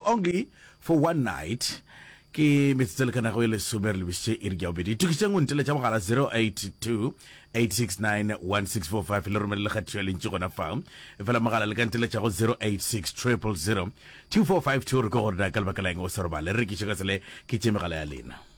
Only for one night ke metsotso e lekanago e lesome re lebisitše iri ya bobedi tokiseng o nteletša mogala 0828691645 le romele lekgathišo ya lentši gona fa efela mogala le ka nteletša go 0860002452 re ko gore na ka lebaka la eng o sa robale re rekiše ka sele ke tše megala ya lena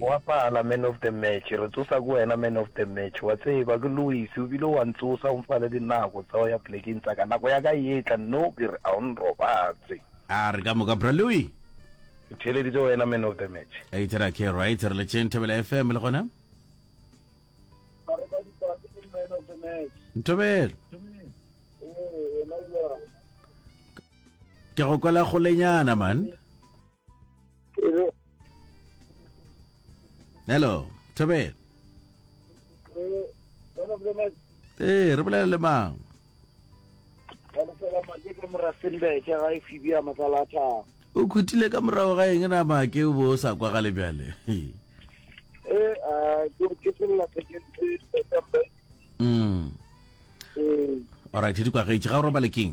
Wa pala man of the match, re tsosa ko wena man of the match. Wa tseba ke Louis o bile wa ntsosa o mpha le dinako tsa go ya plekeng tsa ka. Nako ya ka e etla nno ke re a o nrobatse. A re ka moka bra Louis. Ke theeleditse wena man of the match. A itse ra ke right re le tšeng Thobela FM le gona. Ntobelo. Ke go kwela golenyana man. hello thobela ee re bolela le mang o khutile ka morago ga eng na make o bo o sa kwa gale bjale mm. alright di kwagetše ga o robale keng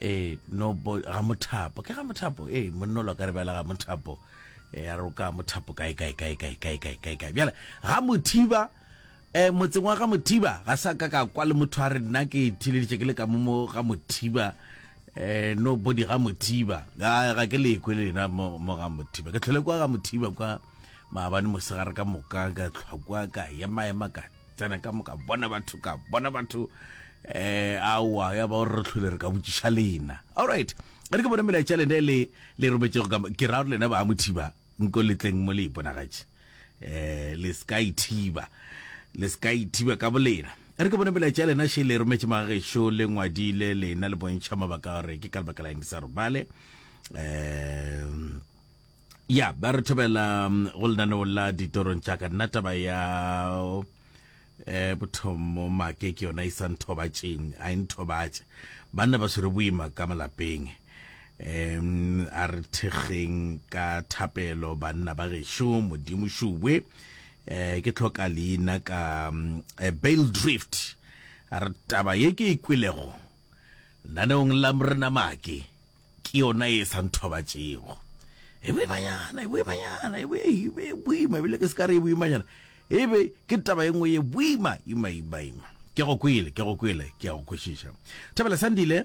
ee no ga mothapo ke ga mothapo ee monnolo ka re bjala ga mothapo ee a roka mothapo kae kae kae kae kae kae kae kae bjala ga mothiba um motseng wa ga mothiba ga sa ka ka kwa le motho a re nna ke thileditše ke le ka momo ga mothiba um no body ga mothiba ga ke lekwe le lena mo ga mothiba ke tlhole kwa ga mothiba kwa maabane mosegare ka moka ka tlhwa kwa ka ema ema ka tsena ka moka bona batho ka bona batho eh awa ya ba o re tlhole re ka botšiša lena all right e re ke bone melaetša lena le le rometšego ka ke ra gore lena ba mothiba nko letleng mo le iponagatše eh le ska ithiba le ska ithiba ka bolena e re ke bone melaetša lena she le rometše magešo le ngwadile lena le bontšha mabaka gore ke ka lebaka la eng ke sa robale um ya ba re thobela mm, go lenaneo la ditorong tša ka nna taba ya um eh, bothomo make ke yona e sa nthobatšeng a e nthobatše banna ba swere boima ka malapeng um a re thekgeng ka thapelo banna ba gešo modimo šubwe um ke tlhoka leina ka um, eh, bale drift a re taba ye ke e kwelego naneong la morena make Ke yona ye e sa nthobatšego. E boimanyana, e boimanyana, e bo e be e boima, ebile ke se ka re e boimanyana. E be ke taba e nngwe ye boima, ima, ima, ima. Ke go kwele, ke go kwele, ke a go kwešiša. Thabela Sandile,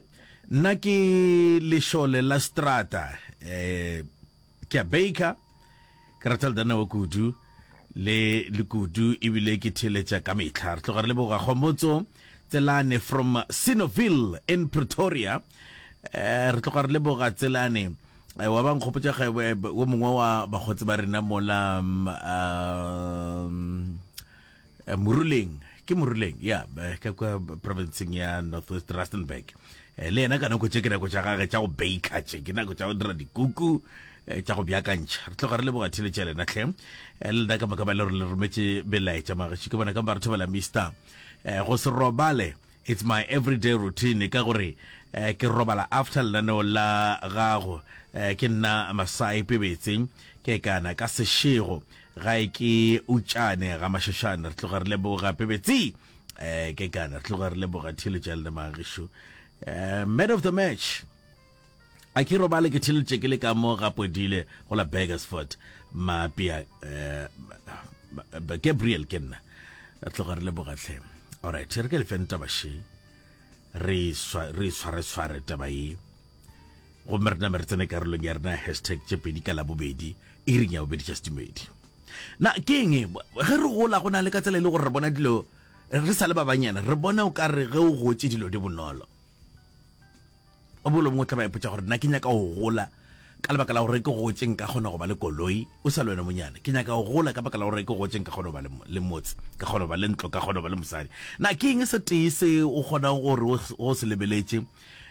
nna ke lešole la setrata, eh, ke a baker ke rata le danawa kudu le lekudu ebile ke theeletša ka metlha re tloga re leboga kgomotso tselane from sinoville in pretoria eh, re tloga re leboga tselane eh, wa ba nkgopotsa ge wo mongwe wa bakgotsi ba rena mola um, um, Eh, moruleng ke moruleng ya eh, ka kwa provinceng ya northwest rustenburg eh, le yena ka nako tše ke nako tša gage tša go baker tše ke nako tša go dira dikuku tša go bjakantšha re tloga re leboga theletša lena tlhe le lena ka moka ba le gore le rometše belaetša magaši ke bona ka ba re thobela mister go se robale It's my everyday routine ka gore ke robala after lenaneo la gago ke nna Masai Pebetse ke kana ka sešego gae ke utšane ga Mašošane re tloga re leboga Pebetse ke kana re tloga re leboga Thilo Tšalle Magisho man of the match. A ke robale ke theletše ke le ka mo ga Podile go la Burgersfort Mapia eh, Gabriel ke nna tloga re leboga tlhe alright re ke le feng taba she re tshware tshware taba ye gomme re name re tsene karolong ya rena hashtag tše pedi ka labobedi e reng ya bobedi tša setumedi na ke eng ge re gola go na le ka tsela e le gore re bona dilo re sa le ba banyana re bona o ka re ge o gotse dilo di bonolo O mongwe le o mongwe o tla ba ipotša gore, Na ke nyaka go gola ka lebaka la gore ke gotše nka kgona go ba le koloi? O sa le wena monyane. Ke nyaka go gola ka baka la gore ke gotše nka kgona go ba le, le motse, ka kgona go ba le ntlo, ka kgona go ba le mosadi. Na ke eng se tee se o kgonago gore o, o se lebeletše?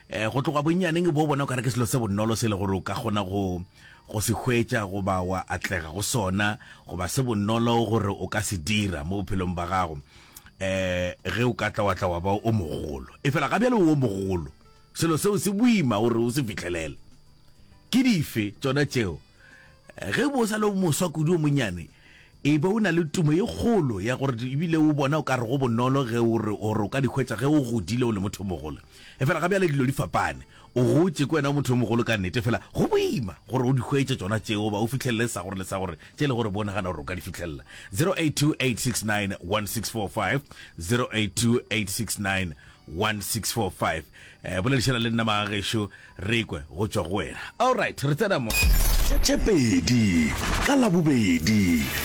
E, go tloga bonnyaneng bo o bona o ka re ke selo se bonolo se e le gore o ka kgona go, go se hwetša goba wa atlega go sona, goba se bonolo gore o ka se dira mo bophelong bja gago. um ge o ka tla wa tla wa ba o mogolo efela ga bjale o mogolo selo seo se boima gore o se fitlhelele ke dife tsona tšeo ge bo sa le moswa kudu o monyane e be o na le tumo e kgolo ya gore ebile o bona o ka re go bonolo ge o re o ka dikgwetsa ge o godile o le motho mogolo efela ga bjale dilo di fapane O gotše, ke wena o motho yo mogolo ka nnete, fela go boima gore o di hwetše tšona tšeo goba o fihlelele sa gore le sa gore tše e lego gore bo nagana gore o ka di fihlella. 0828691645, 0828691645. Boledišana le nna magagešu re ekwe go tšwa go wena. Alright, re tsena mo. Tše pedi ka Labobedi